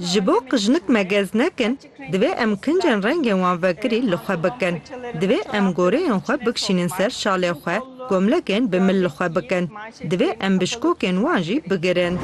Ji bo ku jinik megez nekin, divê em kincên rengên wan vekirî li xwe bikin. Divê em goreyên xwe bikşînin ser şalê xwe, komlekên bi mil li xwe bikin. Divê em bişkokên wan jî bigirin.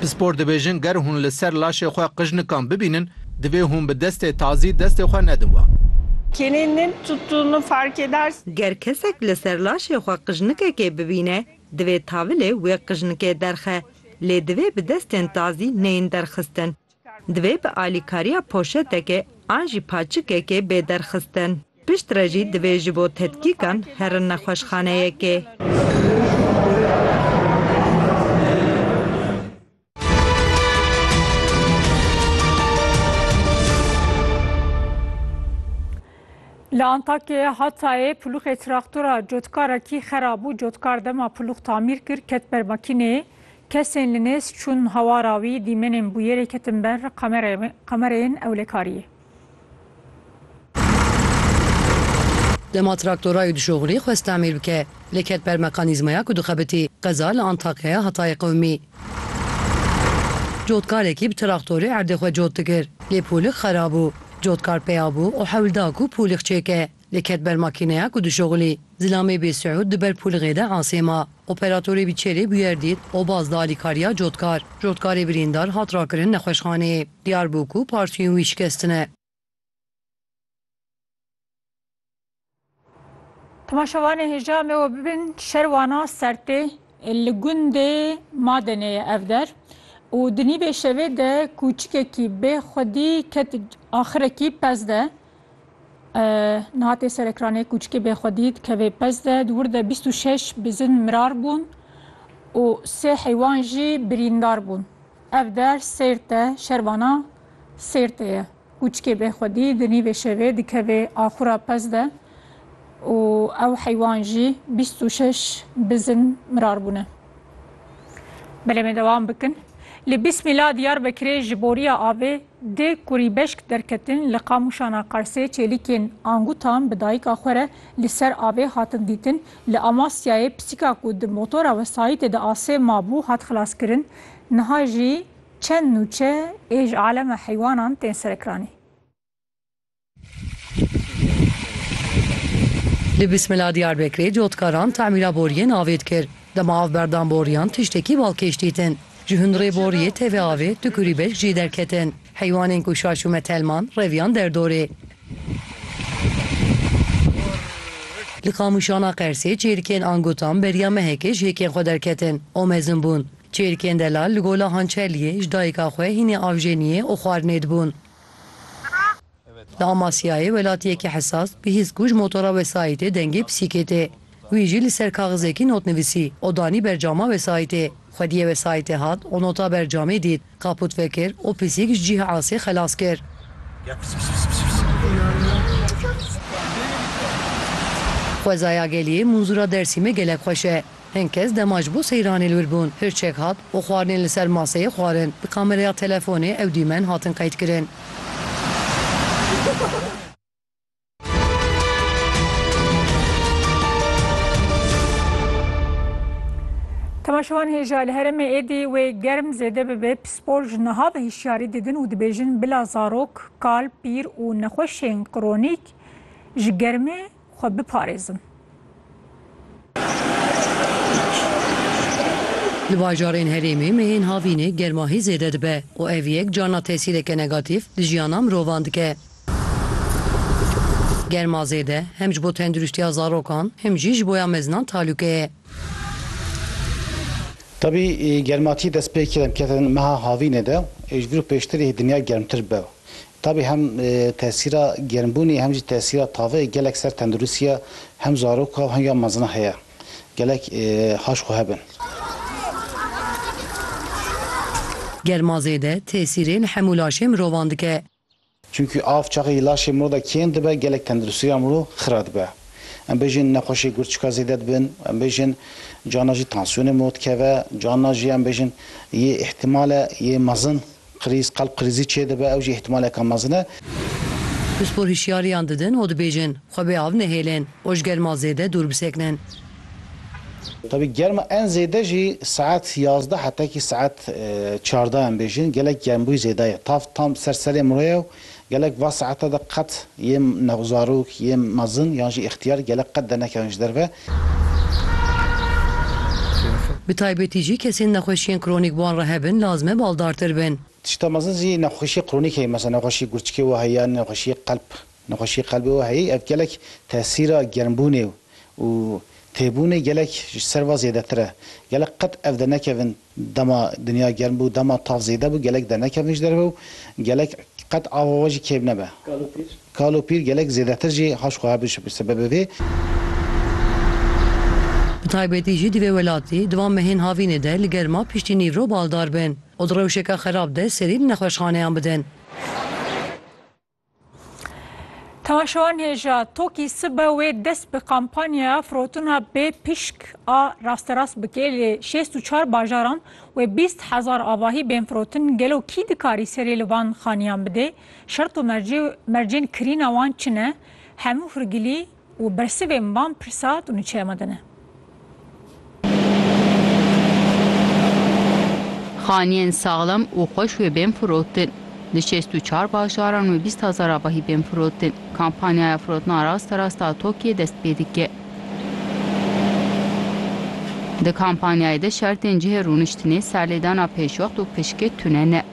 Pispor dibêjin ger hûn li ser laşê xwe qijnikan bibînin, divê hûn bi destê tazî destê xwe nedin wan. Ger kesek li ser laşê xwe qijnikekê bibîne, Divê tavilê wê qijnikê derxe, lê divê bi destên tazî neyên derxistin. Divê bi alîkariya poşetekê an jî paçikekê bê derxistin. Piştre jî divê ji bo tedkîkan herin nexweşxaneyekê. Li Antakyayê Hatayê pulûxê traktora cotkarekî xerab bû. Cotkar dema pulûx tamîr kir ket ber makîneyê. Kesên li nêz çûn hawara wî, dîmenên bûyerê ketin ber kamereyên ewlekariyê. Dema traktorayê dişoxilî xwest tamîr bike, lê ket ber mekanîzmaya ku dixebitî, qeza li Antakyaya Hatayê qewimî. Cotkarekî bi traktorê erdê xwe cot dikir, lê polîx xera bû. Cotkar peya bû û hewl da ku polîx çêke. Lê ket ber makîneya ku dişuxulî. Zilamê bê Siûd di ber pûlixê de asê ma. Operatorê bîçerê bûyer dît û baz da alîkariya cotkar. Cotkarê birîndar hat rakirin nexweşxaneyê. Diyar bû ku partiyên wî şikestine. Temaşevanê hêja em ê bibin şerwana sertê li gundê Madenê ye ev der û di nîvê şevê de kûçikekî bê xwedî ket axirekî pez de Niha tê serekranê kûçikê bêxwedî dikeve pez de, di wir de bîst û şeş bizin mirar bûn û sê heywan jî birîndar bûn. Ev der Sêrt e, şervana Sêrtê ye. Kûçikê bêxwedî di nîvê şevê dikeve axura pez de û ew heywan jî bîst û şeş bizin mirar bûne. Belê me dewam bikin. Li Bîsmîla Diyarbekirê ji boriya avê dê kurî beşk derketin li Qamûşana Qarsê çêlîkên angutan bi dayika xwe re li ser avê hatin dîtin. Li Amasyayê pisîka ku di motora wesayîtê de asê mabû hat xilaskirin. Niha jî çend nûçe ê ji alema heywanan tên serekiranî. Li Bismila Diyarbekirê cotkaran temîra boriyên avê dikir. Dema av berdan boriyan tiştekî balkêş dîtin. Ji hundirê boriyê tevê avê du kurî beşk jî derketin. Heywanên ku şaşûme telman reviyan derdorê. Li Qamûşana Qersê çêrikên Angutan beriya mehekê ji hêkên xwe derketin û mezin bûn. Çêrikên Delal li Gola Hançerliyê ji dayika xwe hînê avjeniyê û xwarinê dibûn. Li Amasyayê welatiyekî hesas bi hîs ku ji motora wesayîtê dengê pisîkê tê. Wî jî li ser kaxizekî not nivîsî û danî ber cama wesayîtê. Xwediyê wesayîtê hat û nota ber camê dît, kaput vekir û pisîk ji cihê asê xelas kir. Xwezaya Geliyê Munzûra Dersîmê gelek xweş e. Hin kes dema ji bo seyranê li wir bûn, hirçek hat û xwarinên li ser maseyê xwarin. Bi kamereya telefonê ew dîmen hatin qeydkirin. Temaşevan hêja li herêmê êdî wê germ zêde bibe, pispor ji niha ve hişyarî didin û dibêjin bila zarok, kal, pîr û nexweşên kronîk ji germê xwe biparêzin. Di bajarên herêmê mehên havînê germahî zêde dibe û ev yek carna tesîreke negatîf li jiyana mirovan dike. Germa zêde hem ji bo tendurîstiya zarokan hem jî ji boya mezinan talûke ye. Tevî germatî destpêkirin ketin meha havînê de ê ji vir û pêştirî dinya germtir bibe. Tabî hem tesîra germbûnê hem jî tesîra taveyê gelek ser tendirustiya hem zaroka û hem ya mezin heye. Gelek haş xwe hebin. Germa zêde tesîrên hemû laşê mirovan dike. Çimkî av çaxê laşê mirov de kêm dibe gelek tendirustiya mirov xira dibe. Em bêjin nexweşê gurçika zêde dibin, em bêjin carna jî tansiyonê mirov dikeve, carna jî em bêjin yê îhtimal e yê mezin Krîz, qelb krîzî çêdibe, ew jî îhtimaleke mezin e. Pispor hişyariyan didin û dibêjin, xwe bê av nehêlin û ji germa zêde dûr bisekinin. Tevî germa en zêde jî saet yazdeh hetekî saet çardeh em bêjin gelek germbûy zêde ye. Tav tam ser serê miroye û Gelek va saete de qet yê me zarok, yê mezin yan jî îxtiyar gelek qet dernekevin ji derve. Bi taybetî jî kesên nexweşiyên kronîk wan re hebin lazim e baldartir bin. Tişta mezin jî nexweşiyê kronîk heye. Mesela nexweşiyê gurçikê we heye yan nexweşiyê qelb. Nexweşiyê qelbê we heyî ev gelek tesîra germbûnê û têbûnê gelek ji ser va zêdetir e. Gelek qet ev dernekevin Dema dinya germ bû, dema tav zêde bû, gelek dernekevin ji derve û gelek qet ava we jî kêm nebe. Kal û pîr. Kal û pîr gelek zêdetir jî haş xwe hebûn bi sebebê vê. Bi taybetî jî di vê welatî, di van mehên havînê de li germa piştî nîv ro baldar bin û di rewşeke xerab de serî li nexweşxaneyan bidin. Temaşewan hêja Tokî sibe wê dest bi kampanyaya firotina bê pişk a rasterast bike li şêst û çar bajaran wê bîst hezar avahî bên firotin gelo kî dikarî serê li van xaniyan bidê? Şert û mercên kirîna wan çi ne? Hemû hirgilî Û bersivên van pirsa tu niçeya me de ne. Xaniyên saxlem û xweş wê bên firotin. Di şêst û çar bajaran wê bîst hezar avahî bên firotin. Kampanyaya firotina rasterast a TOKİ'yê dest pê dike. Di kampanyayê de şertên cihê rûniştinê, serlêdana pêşwext û pişkê tune ne.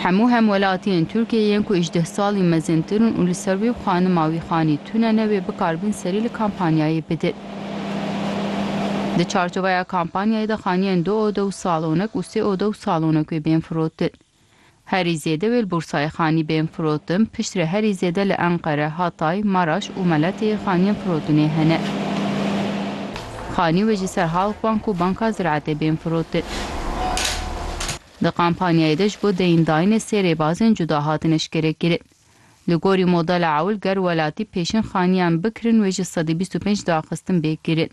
Hemû hemwelatiyên Tirkiyeyê yên ku îjdeh salî mezintir in û li ser wê û xanima wî xanî tune ne wê bikar bin serî li kampanyayê bidin. Di çarçoveya kampanyayê de xaniyên du ode û salonek û sê ode û salonek wê bên firotin. Herî zêde wê li Bursayê xanî bên firotin, piştre herî zêde li Enqere, Hatay, Maraş û Meletiyê xaniyên firotinê hene. Xanî wê ji ser Halkbank û Banka Ziraetê bên firotin. Di kampanyayê de ji bo deyndayînê sê rêbazên cuda hatin eşkerekirin. Li gorî modela ewil ger welatî pêşîn xaniyan bikirin wê ji sedî bîst û pênc daxistin bê kirin.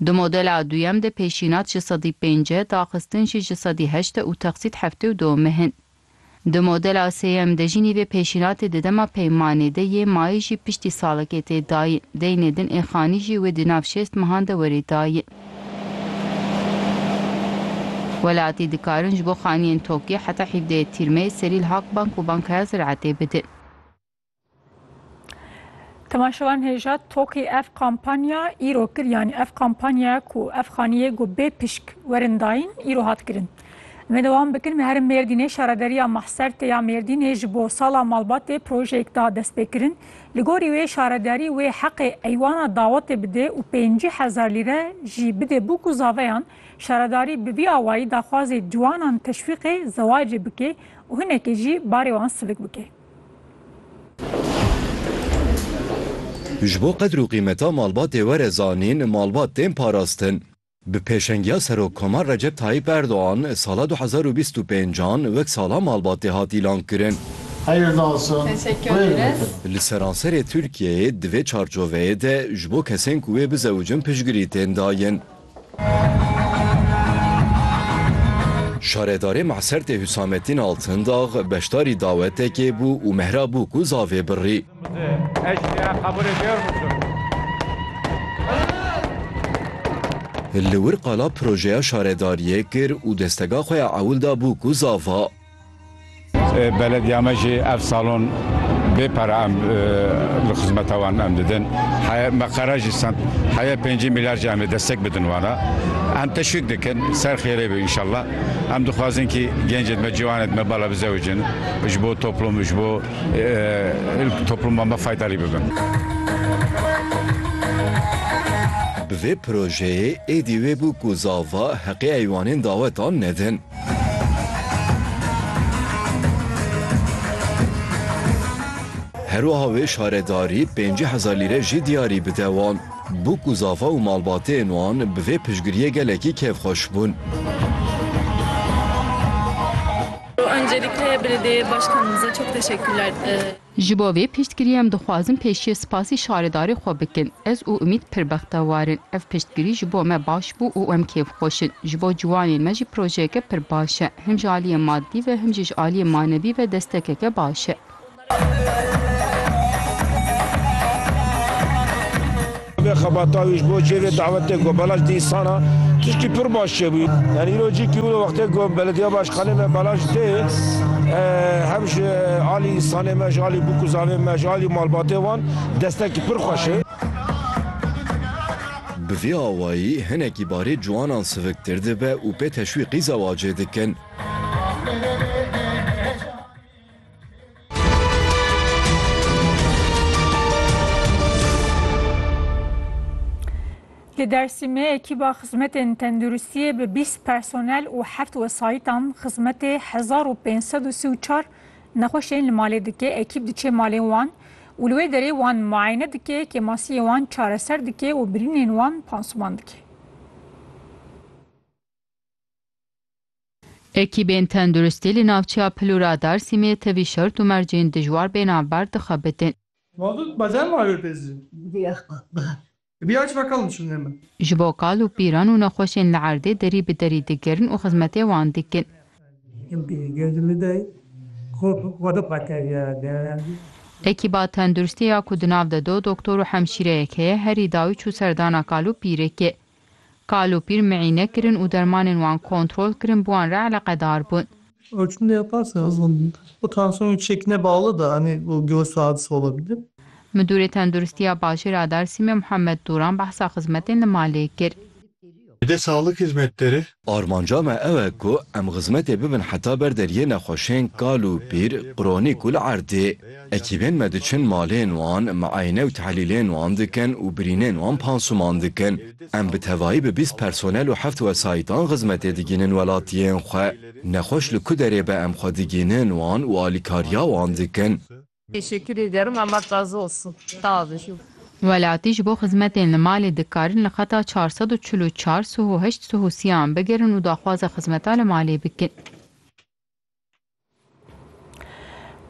Di modela duyem de pêşînat ji sedî pênc e, daxistin jî ji sedî heşt e û texsît heftê û du meh in. Di modela sêyem de jî nîvê pêşînatê di dema peymanê de yê, mayî jî piştî salekê tê dayîn, deynê din ê xanî jî wê di nav şêst mehan de werê dayîn. Welatî dikarin ji bo xaniyên tokî heta hîvdeyê Tîrmeyê serî li Halkbank û Bankaya Ziraetê bidin. Temaşevan hêja tokî ev kampanya îro kir yanî ev kampanyaya ku ev xaniyê ku bê pişk werin dayîn îro hat kirin. Em dewam bikin me herim Mêrdînê şarederiya Mahserte ya Mêrdînê ji bo sala malbatê projeyek da destpêkirin. Li gorî wê şaredarî wê heqê eywana dawetê bidê û pêncî hezar lîre jî bidê bo ku zaveyan şaredarî bi vî awayî daxwazê ciwanan teşwîqê zewacê bikê û hinekê jî barê wan silik bikê. Ji bo qedr û qîmeta malbatê were zanîn, malbat tên parastin. Bi pêşengiya Serokkomar Recep Tayyîp Erdogan sala du hezar û bîst û pênc an wek sala malbatê hat îlan kirin. Heyir dasin, xwêr dikin. Li seranserê Tirkiyeyê di vê çarçoveyê de ji bo kesên ku wê bizewicin piştgirî tên dayin. Şaredarê Masertê Hüsamettin Altındag beşdarî dawetekê bû û mehra bû ku zavê birî. Li wir qala projeya şaredariyê kir û destega xwe ya ewil da bû ku zava. Belediya me jî ev salon bê pere em li xizmeta wan em didin. Heye me qere jî send heye pêncî mîlyar jî em ê destek bidin wan e. Em teşwîk dikin ser xêrê be înşallah. Em dixwazin kî gencên me, ciwanên me bala bizewijin ji bo toplûm ji bo. Topluma me faydarî bibin. Bi vê projeyê êdî wê bû ku zava heqê heywanên dawetan nedin. Her wiha wê şaredarî pêncî hezar lîre jî diyarî bide wan. Bû ku zava û malbateyên wan bi vê piştgiriyê gelekî kêfxweş bûn. Ji bo vê piştgiriyê em dixwazin pêşiyê spasî şaredarê xwe bikin. Ez û Umît pir bextewar in. Ev piştgirî ji bo me baş bû û em kêfxweş in. Ji bo ciwanên me jî projeyeke pir baş e. Him ji aliyê madî ve him jî ji aliyê manevî ve destekeke baş e. Vê xebata wî ji bo cihê vê dawetê ku Balaj dî însana tiştî pir baş çêbû. Yani îro cî kî wilo wextê ku Belediya Başkanê me Balaj tê hem ji alî însanê me, ji alî bûk û zavên me, ji alî malbatê wan destekî pir xweş e. Bi vê awayî hinekî barê ciwanan siviktir dibe û pê teşwîqî zewacê dikin. Li Dersîmê ekîba xizmetên tenduristiyê bi bîst personel û heft wesayîtan xizmetê hezar û pênc sed û sî û çar nexweşên li malê dike. Ekîb diçe malên wan û li wê derê wan muayene dike, kêmasiyê wan çareser dike û birînên wan pansuman dike. Ekîbên tenduristî li navçeya Pilûra Darsîmê tevî şert û mercên dijwar bê navber dixebitin. Ji bo kal û pîran û nexweşên li erdê derî bi derî digirin û xizmetê wan dikin. Ekîba tenduristê ya ku di nav de du doktor û hemşîreyek heye herî dawî çû serdana kal û pîrêkê. Kal û pîr mîîne kirin û dermanên wan kontrol kirin bi wan re eleqedar bûn. Midûrê Tenduristiya Bajêra Dersîmê Muhammed Dûran behsa xizmetên li malê kir. Bi dê saxlek hizmet dere Armanca me ew e ku em xizmetê bibin heta ber deriyê nexweşên kal û pîr, qronîk û li erdê. Ekîbên me diçin malên wan, miayne û tehlîlên wan dikin û birînên wan pansuman dikin. Em bi tevayî bi bîst personel û heft wesayîtan xizmetê digihînin welatiyên xwe. Nexweş li ku derê be em xwe digihînin wan û alîkariya wan dikin. Teşekkür ederim Allah razı olsun sağ olun ju. Welatî ji bo xizmetên li malê dikarin li xeta çar sed û çil û çar suh û heşt suh û siyan bigirin û daxwaza xizmeta li malê bikin.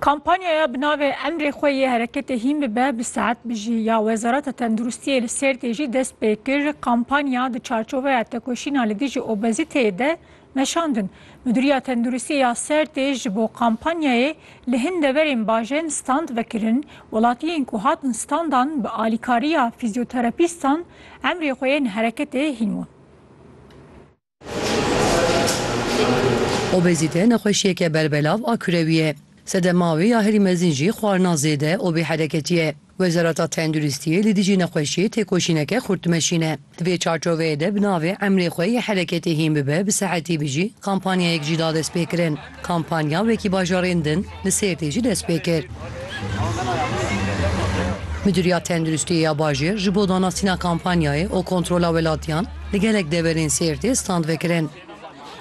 Kampanyaya bi navê Emrê xwe yê hereketê hîn bibe bi saet bijî ya Wezareta Tenduristiyê li Sêrtê jî dest pê kir. Kampanya di çarçoveya tekoşîna li dijî obezîteyê de Meşandin, Mudîriya Tenduristiyê ya Sêrtê ji bo kampanyayê li hin deverên bajên stand vekirin, welatiyên ku hatin standan bi alîkariya fîzyoterapîstan emrê xwe yên hereketê hîn wan. Obezîte nexweşiyeke berbelav a kurewî ye. Sedema wê ya herî mezin jî xwarina zêde û bêhereketî ye. Wezareta Tenduristiyê li dijî nexweşiyê têkoşîneke xurt dimeşîne. Di vê çarçoveyê de bi navê Emrê xwe yê hereketê hîn bibe bi sehetî bijî kampanyayek jî da destpêkirin. Kampanya wekî bajarên din li Sêrtê jî dest pê kir. Midûriya Tenduristiyê ya bajêr ji bo danasîna kampanyayê û kontrola welatiyan li gelek deverên Sêrtê stand vekirin.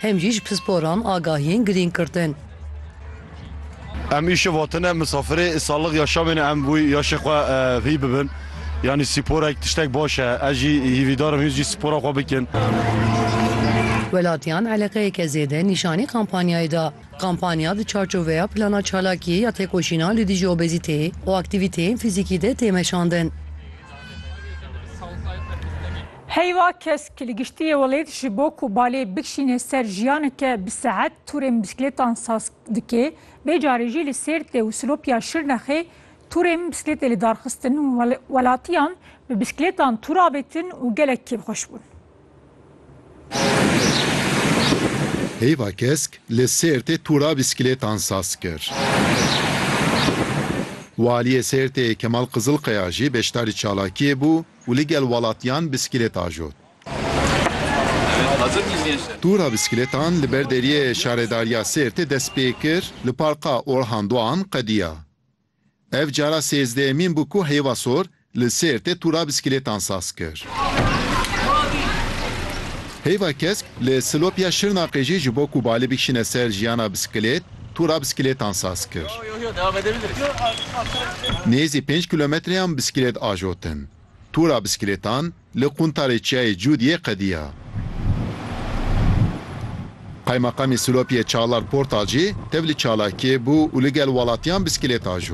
hem jî ji pisporan agahiyên girîng girtin. Em îşev hatine misafirê salix ya şamê ne em wî ya şê xwe hî bibin yanî sporek tiştek baş e ez jî hîvîdar im hîn jî spora xwe bikin. Welatiyan eleqeyeke zêde nîşanî kampanyayê da. Kampanya di çarçoveya plana çalakî ya têkoşîna li dijî obezîteyê û aktîvîteyên fîzîkî de tê meşandin. Heyva kes ki li giştîyê welêt ji bo ku balê bikişîne ser jiyaneke bi seet tûrên bisiklêtan saz dike, vê carê jî li Sêrtê û Silopya Şirnexê tûrên bisiklêtê li dar xistin û welatiyan bi bisiklêtan tûr avêtin û gelek kêfxweş bûn. Heyva kesk li Sêrtê tûra bisiklêtan saz kir. Waliyê Sêrtê Kemal Qizilqeya jî beşdarî çalakiyê bû û li gel welatiyan bîsklêt ajot. Tûra bîsklêtan li ber deriyê Şaredariya Sêrtê dest pê kir li Parka Orhan Doğan qediya. Ev cara sêzdehemîn bû ku Heyva Sor li Sêrtê tûra bîsklêtan saz kir. Heyva Kesk li Silopiya Şirnexê jî ji bo ku balê bikişîne ser jiyana bîsklêt, Tûra bisikilêtan saz kir. Nêzî pênc kîlometreyan bisikilêt ajotin. Tûra bisikilêtan li quntarê çiyayê Cûd yê qediya. Qaymaqamê Silopiyê Çalar Portalcî tev li çalakiyê bû û li gel welatiyan bisikilêt ajo.